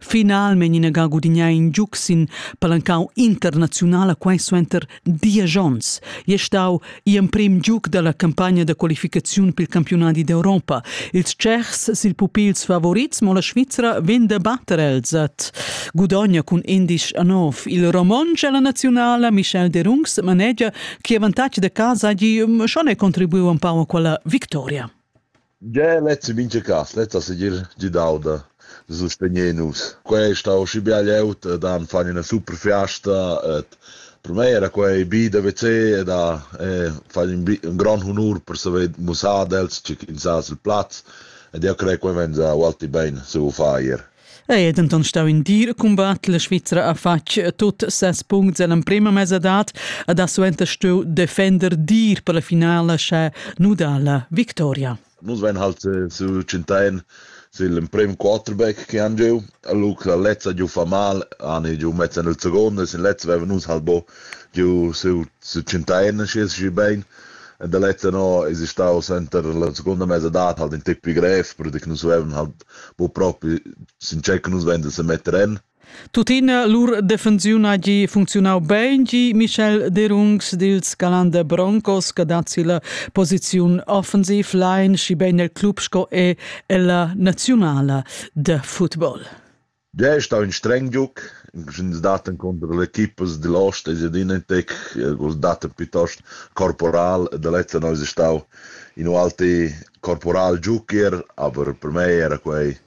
Finalmein inaga gudignà in giug sin palancau internaziunala quai suenter diesch onns. È stau gl'emprem giug dalla campagna da qualificaziun pil campionadi d'Europa. Ils tschechs sil pupils favorits, mo la Svizra vegn da batter els at gudogna cun indisch a nov. Il romontsch alla nazionala Michel Derungs manegia che avantatg da casa gi schon è contribuiu un pau a quella victoria. Gie, lez è mintga cas, lez ha segir gidau da sustegner nus. Quei ei stau schi bia glieud ed han fatg ina super fiasta. Ed per mei era quei bi da WC ed ha fatg in, in grond honur per saver mussar ad els tgi ch'ins ha sil plaz. Ed jeu crei quei vegn ualti bein saviu far ier. Ei è denton stau in dir cumbat. La Svizra ha fatg tut ses puncts ell'emprema mesadad ed ha suenter stuiu defender dir per la finala sche nudar la victoria. Nus vein halt eh, su Cintain sil emprem quarterback che han giu. Luc la lezza giu fa mal, han giu mezza nel secondo, sin lezza vevan nus halt bo giu su su Cintain schi schi bein. E da lezza no es stau center la seconda mesadad halt in tippi grev, per nus vevan halt bo propi sincer che nus vender se metter en. Tuttina lur defensiun ha gi funzionau bein gi Michel Derungs dils Galande Broncos che dat si la posiziun offensiv line schi bein el club sco e ella nazionala de football. Dei è stau in streng giug, ins dat encunter l'equipas digl ost e Sedinentec, vus dat piuttost corporal, da lezza eis ei stau in ualti corporal giugier, aber per mei era quei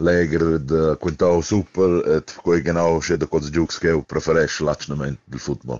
legher da quintau super, et quei genau sche da quels giugs ch'jeu preferesch l'atschgnament dil football.